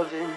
sinn.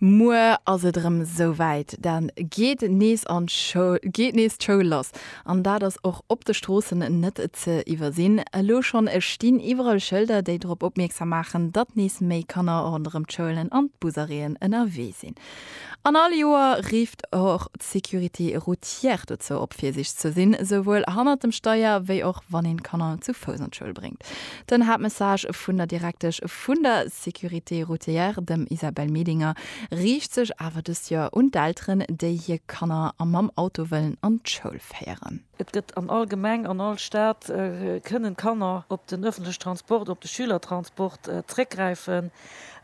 Muer ass et erëm esou wäit, da geet nees d'Schoul lass an dat ass och op de Stroossen net ze iwwersinn. Elo schonn stinn iwwerall Schëlder, déi drop opmierksam maachen, datt nees méi Kanner ronderëm d'Schoulen an d'Busarrêten ënnerwee sinn. An all Joer rifft och d'Sécurité routière dozou op, virsiichteg ze sinn, souwuel hannert dem Steier wéi och wann een d'Kanner zu Fouss an d'Schoul bréngt. Den Haaptmessage vun der Direktesch vun der Sécurité routière, dem Isabelle Medinger, riicht sech awer dëst Joer un d'Elteren, déi hir Kanner mam Auto wëllen an d'Schoul féieren. Et gëtt an all Gemeng, an all Stad kënnen d'Kanner op den öffentliche Transport, op de Schülertransport zréckgräifen.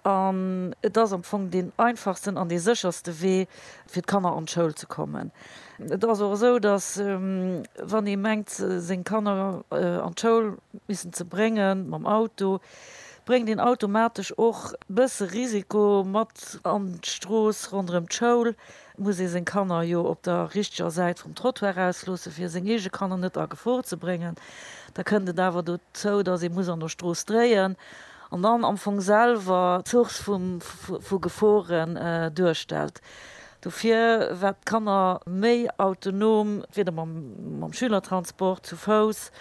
An et ass am Fong deen einfachsten an dee sécherste Wee fir d'Kanner an d'Schoul ze kommen. Et ass och esou, datt wann ee mengt seng Kanner an d'Schoul missen ze brénge mam Auto, bréngt een automatesch och bësse Risiko mat an d'Strooss ronderëm d'Schoul, Et muss ee seng Kanner jo op der richteger Säit vum Trottoir ausloossen, fir seng eege Kanner net a Gefor ze bréngen. Da kënnt et awer dozou, dass ee muss an der Strooss dréien an dann am Fong selwer d'Source vu Geforen duerstellt. Dofir, wat d'Kanner méi autonom, entweeder mam Schülertransport, zu Fouss,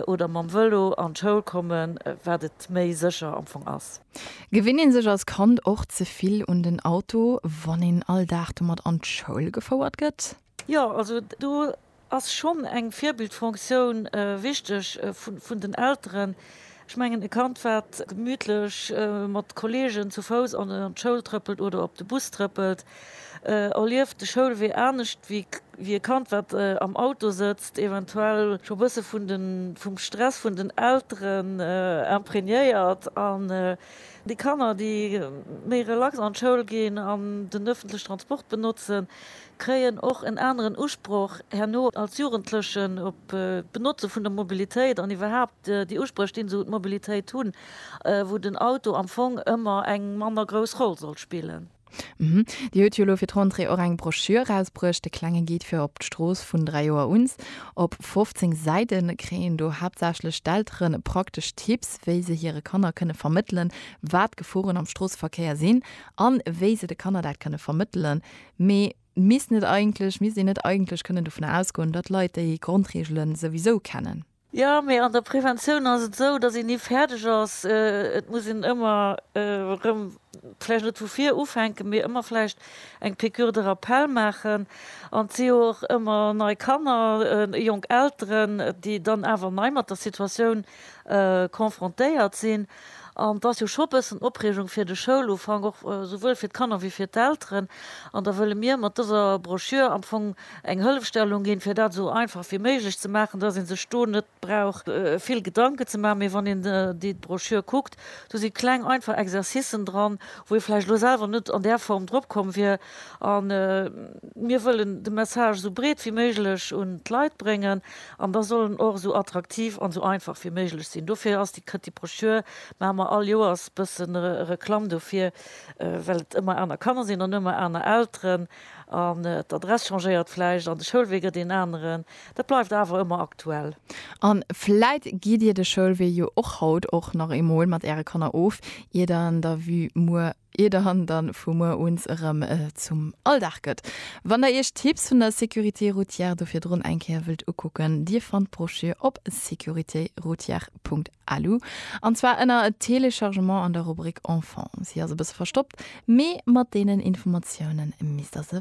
oder mam Vëlo an d'Schoul kommen, wat et méi sécher am Fong ass. Gewinnt een sech als Kand och ze vill un den Auto, wann een all Dag domat an d'Schoul gefouert gëtt? Jo, also do ass schonn eng Virbildfunktioun wichteg vun den Elteren. Ech mengen, e Kand, wat gemütlech mat Kolleegen zu Fouss an d'Schoul trëppelt oder op de Bus trëppelt, erlieft de Schoulwee anescht wéi e Kand, wat am Auto sëtzt, eventuell scho bësse vum Stress vun den Elteren imprégnéiert. An déi Kanner, déi méi relax an d'Schoul ginn an den öffentliche Transport benotzen, kréien och en aneren Usproch herno als Jugendlechen op d'Benotze vun der Mobilitéit an iwwerhaapt déi Uspréch, déi se un d'Mobilitéit hunn, wou den Auto am Fong ëmmer eng manner grouss Roll soll spillen. Mme, Dir hutt jo elo fir d'Rentrée och eng Broschür erausbruecht, De klenge Guide fir op d'Strooss, vun 3 Joer uns. Op 15 Säite kréien een do haaptsächlech d'Eltere praktesch Tipps, wéi se hire Kanner kënne vermëttelen, wat d'Geforen am Stroosseverkéier sinn an wéi se de Kanner dat kënne vermëttelen, Mee misst net eigentlech, misst een net eigentlech kënnen dovun ausgoen, datt Leit déi Grondreegele souwisou kennen? Jo, mee an der Preventioun ass et esou, datt een ni fäerdeg ass. Et muss een ëmmer erëm, vläicht net vu vir ufänken, mee ëmmer vläicht eng Piqûre de rappel maachen. An et si jo och ëmmer nei Kanner, jonk Elteren, déi dann awer nei mat der Situatioun confrontéiert sinn. An et ass jo scho e bëssen Opreegung fir de Schoulufank, och souwuel fir d'Kanner wéi fir d'Elteren. An da wëlle mir mat dëser Broschür am Fong eng Hëllefstellung ginn, fir dat esou einfach wéi méiglech ze maachen, dass ee sech do net brauch vill Gedanken ze maachen. Mee wann een déi Broschür kuckt, do si kleng einfach Exercicen dran, wou ee vläicht elo selwer net an där Form drop komm wier. A mir wëllen de Message esou breet wéi méiglech un d'Leit bréngen. An da soll en och esou attraktiv an esou einfach wéi méiglech sinn. Dofir ass déi Këtt, déi Broschür maache mer all Joers bëssen Reklamm dofir, well et ëmmer aner Kanner sinn an ëmmer aner Elteren an d'Adress changéiert vläicht an de Schoulwee gëtt een aneren. Dat bleift awer ëmmer aktuell. An vläit gitt Dir de Schoulwee jo och haut och nach eemol mat Äre Kanner of, ier der an der Vue muer ier de Hund dann vu muer uns erëm zum Alldag gëtt. Wann der iech d'Tipps vun der Sécurité Routière do virdrun eng Kéier wëllt ukucken, dir fannt d'Broschür op securitéroutière.lu, an zwar ënner Téléchargement an der Rubrik Enfants. Si ass e bësse verstoppt, mee mat deenen Informatiounen misst der se.